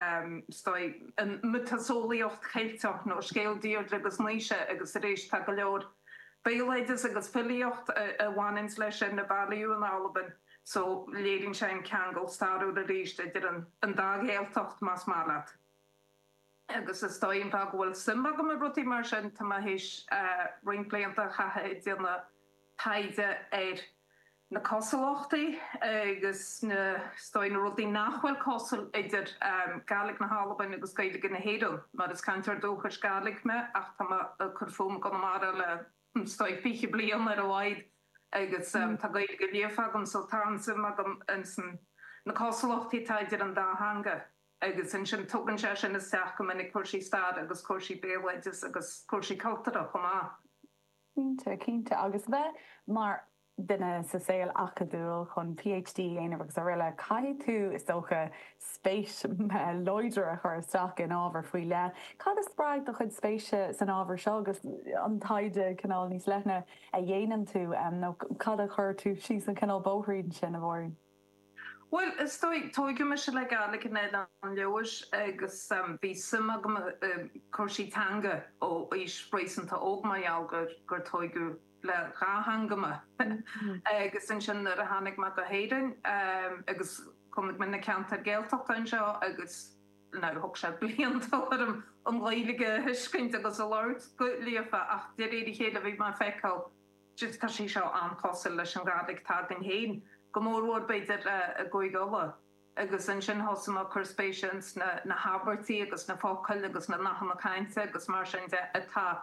an miotaseolaíocht Cheilteach nó scéal Dheirdre agus Naoise, agus arís, tá go leor béaloideas agus filíocht a bhaineanns leis arna bhailiú in Albain, so léiríonn sé an ceangal stairiúil arís idir an dá Ghaeltacht, más maith leat. Agus is dóigh an fáth go bhfuil suim agam i rudaí mar sin, tá mé th'éis roinnt blianta a chaitheamh ag déanamh taighde ar. na cosúlachtaí agus na, is dóigh, na rudaí nach bhfuil cosúil idir Gaidhlig na hAlban agus Gaeilge na hÉireann, mar is cainteoir dúchais Gaidhlig mé ach tá mé ag cur fúm i gConamara le, is dóigh, fiche bliain ar a laghad agus tá Gaeilge líofa agam so tá an-suim agam ins na cosúlachtaí atá idir an dá theanga agus ansin tugann sé sin isteach go minic cúrsaí staire agus cúrsaí béaloideas agus cúrsaí cultúrtha chomh maith. Cinnte, cinnte. Agus bheith mar. duine sa saol acadúil chun PhD a dhéanamh agus aroile, caithfidh tú, is dócha, spéis láidir a chur isteach in ábhar faoi leith. Cad a spreag do chuid spéise san ábhar seo agus an taighde cineál níos leithne a dhéanann tú, nó cad a chuir tú síos an cineál bóithrín sin, a Mháirín? Bhuel, is dóigh, tóigeadh mise le Gaidhlig in Oileán Leodhais agus bhí suim agam i cúrsaí teanga ó aois réasúnta óg mar gheall gur tóigeadh le dhá theanga mé. Agus ansin nuair a tháinig mé go hÉirinn agus chonaic mé na ceantair Gaeltachta anseo agus now thóg sé blianta orm an Ghaeilge a thuiscint agus a labhairt go líofa ach de réir a chéile bhí mé ag feiceáil Tá sé seo an-chosúil leis an nGàidhlig atá againn féin, go mórmhór, b'fhéidir, i gCúige Uladh. Agus ansin thosaigh mé ag cur spéise ins na habairtí agus na focail agus na nathanna cainte agus mar sin de atá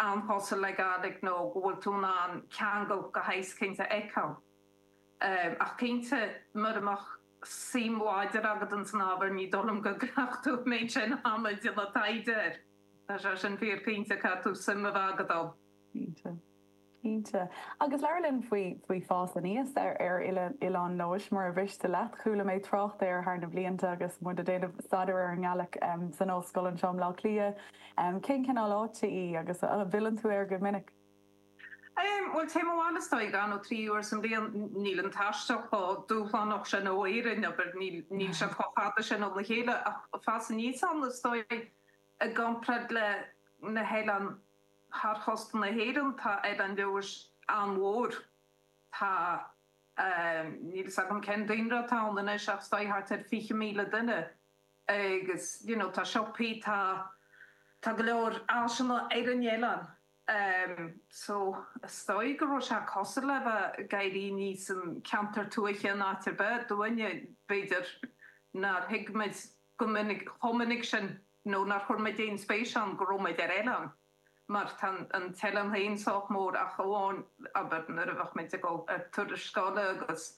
an-chosúil le Gàidhlig nó go bhfuil tú in ann ceangal de shaghas éicint a fheiceáil. Ach cinnte, mura mbeadh suim láidir agat ins an ábhar ní dóigh liom go gcuirfeadh tú an méid sin ama ag déanamh taighde air. Tá sé sin fíor cinnte, caithfidh tú suim a bheith agat ann. Cinnte. Cinnte. Agus labhair linn faoi faoi fás aníos ar ar oile Oileán Leodhais, mura mhiste leat. Chuala mé trácht air thar na blianta agus muid a' déanamh staidéir ar an nGaidhlig em san ollscoil anseo i mBleá Cliath. Em cén cineál áite í agus a' bhfilleann tú air go minic? Em, bhuel téim abhaile is dóigh dhá nó trí uair sa mbliain. N níl an taisteal chomh dúshlánach sin ó Éirinn abair, níl níl sé chomh fada sin óna chéile ach fás aníos ann is dóigh i gcomparáid le na hoileáin Thar chósta na hÉireann tá Oileán Leòdhais an-mhór. Tá, níl fhios agam cén daonra atá ann anois ach is dóigh thart ar 20,000 duine agus you know tá siopaí, tá, tá go leor áiseanna ar an oileán. So is dóigh go raibh sé cosúil le bheith ag éirí aníos in ceantar tuaithe in áit ar bith, dúinne b'fhéidir nár thuig muid go minic, chomh minic sin. nó nár chuir muid aon spéis ann go raibh muid ar oileán, mar tá an t-oileán féin sách mór ach amháin, abair, nuair a bheadh muid ag dul ar turais scoile agus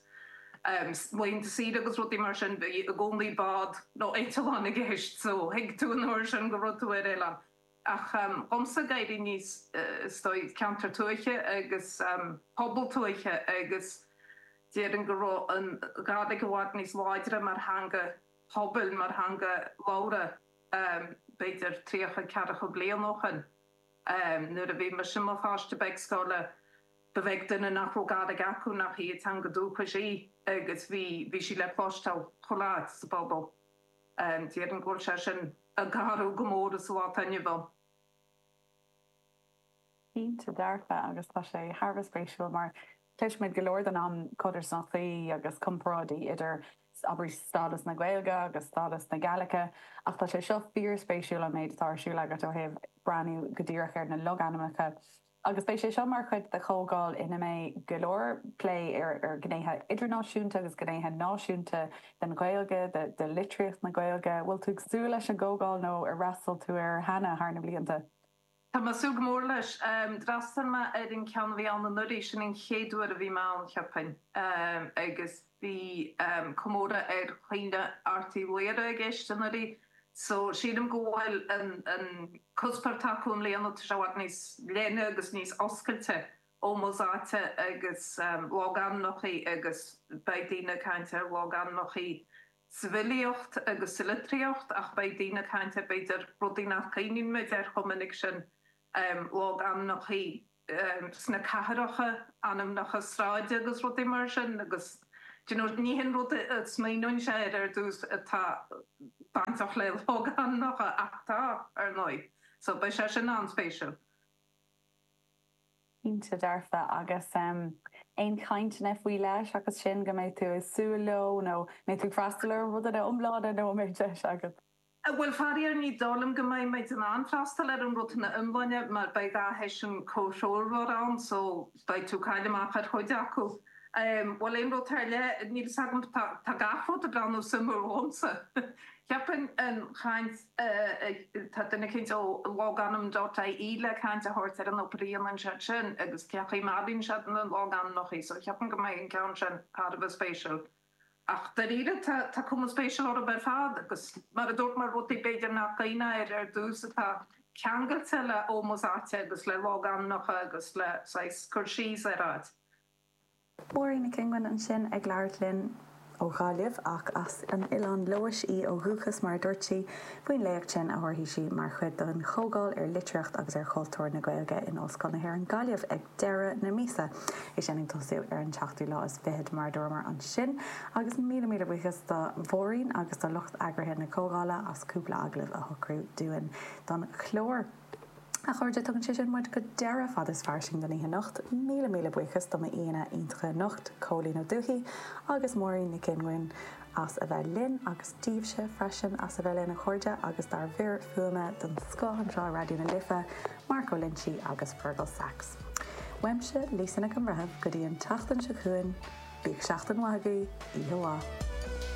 laethanta saoire agus rudaí mar sin, bhí i gcónaí bád nó eitleán i gceist, so thuig tú an uair sin go raibh tú ar oileán. Ach dhomsa, ag éirí aníos, is dóigh, ceantar tuaithe agus pobal tuaithe agus déarfainn go raibh an Ghàidhlig i bhfad níos láidre mar theanga phobail mar theanga labhartha, b'fhéidir tríocha ceathracha bliain ó shoin. Nuair a bhí mise i mo pháiste beag scoile, ba bheag duine nach raibh Gàidhlig acu nach í a teanga dúchais í agus bhí bhí sí le cloisteáil chuile áit sa phobal. Déarfainn go bhfuil sé sin ag athrú go mór sa lá atá inniu ann. Cinnte dearfa, agus tá sé thar a bheith spéisiúil mar cloisimid go leor den am codarsnachtaí agus comparáidí idir, abair, stádas na Gaeilge agus stádas na Gàidhlige, ach tá sé seo fíorspéisiúil, an méid atá ar siúl agat ó thaobh breathnú go díreach ar na logainmneacha. Agus beidh sé seo mar chuid de chomhdháil ina mbeidh go leor plé ar ghnéithe idirnáisiúnta agus gnéithe náisiúnta den Ghaeilge, de litríocht na Gaeilge. Bhfuil tú ag súil leis an gcomhdháil nó ar fhreastail tú air cheana thar na blianta? Tá mé ag súil go mór leis. D'fhreastail mé ar an ceann a bhí ann anuraidh, sin an chéad uair a bhí mé ann, cheapfainn, agus bhí comóradh ar Chaoineadh Airt Uí Laoghaire i gceist anuraidh, so sílim go bhfuil an cuspair atá acu i mbliana, tá sé i bhfad níos leithne agus níos oscailte, ómós áite agus logainmneacha agus beidh daoine ag caint ar logainmneacha. sa bhfilíocht agus sa litríocht ach beidh daoine ag caint ar, b'fhéidir, rudaí nach gcuimhníonn muid air chomh minic sin, logainmneacha sna cathracha, ainmneacha sráide agus rudaí mar sin agus ní shin rud a smaoineoinnse air ar dtús atá bainteach le logainmneacha ach tá, ar ndóigh. So beidh sé sin an-spéisiúil. Cinnte, dearfa, agus aon chainteanna faoi leith seachas sin go mbeidh tú ag súil leo nó mbeidh tú ag freastal ar an rud ina iomláine nó an mbeidh deis agat? Bhuel, faraor, ní dóigh liom go mbeidh muid in ann freastal ar an rud ina iomláine mar beidh dhá sheisiún comhthreomhar ann so beidh tú ag cailleadh amach ar chuid acu. Bhuel, aon rud ar leith, níl fhios agam, tá gach rud ag breathnú suimiúil dhomsa. Cheapfainn an chaint. Tá duine éicint ó logainm DotIE le caint a thabhairt ar an obair a dhéanann siad sin agus cén chaoi a mbailíonn siad na logainmneachaí, so cheapfainn go mbeidh an ceann sin thar a bheith spéisiúil. Ach dáiríre tá tá cuma spéisiúil orthu ar fad agus mar a dúirt mé rudaí b'fhéidir nach daoine ar ar dtús atá ceangailte le ómós áite agus le logainmneacha agus le saghas cur síos ar áit. Máirín Nic Fhionguin ansin ag labhairt linn ó Ghaillimh ach as an Oileán Leodhais í ó dhúchas mar a dúirt sí faoin léacht sin a thabharfaidh sí mar chuid den chomhdháil ar litríocht agus ar chultúr na Gaeilge in Ollscoil na hÉireann Gaillimh ag deireadh na míosa é sin ag tosú ar an tseachtú lá is fichead mar a dúramar ansin agus míle míle buíochas do Mháirín agus do lucht eagraithe na comhdhála as cúpla agallamh a shocrú dúinn don chlár. A chairde, tugann sé sin muid go deireadh Fada is Fairsing don oíche anocht. Míle míle buíochas do m'aíonna iontacha anocht, Cóilín Ó Dubhthaigh agus Máirín Nic Fhionguin as a bheith linn agus daoibhse freisin as a bheith linn, a chairde, agus dár bhfir fuaime den scoth anseo i Raidió na Life, Mark Ó Loinsigh agus Fearghal Saxe. Uaimse, Lisa Nic an Bhreithimh, go dtí an tseachtain seo chugainn, bíodh seachtain mhaith agaibh, oíche mhaith.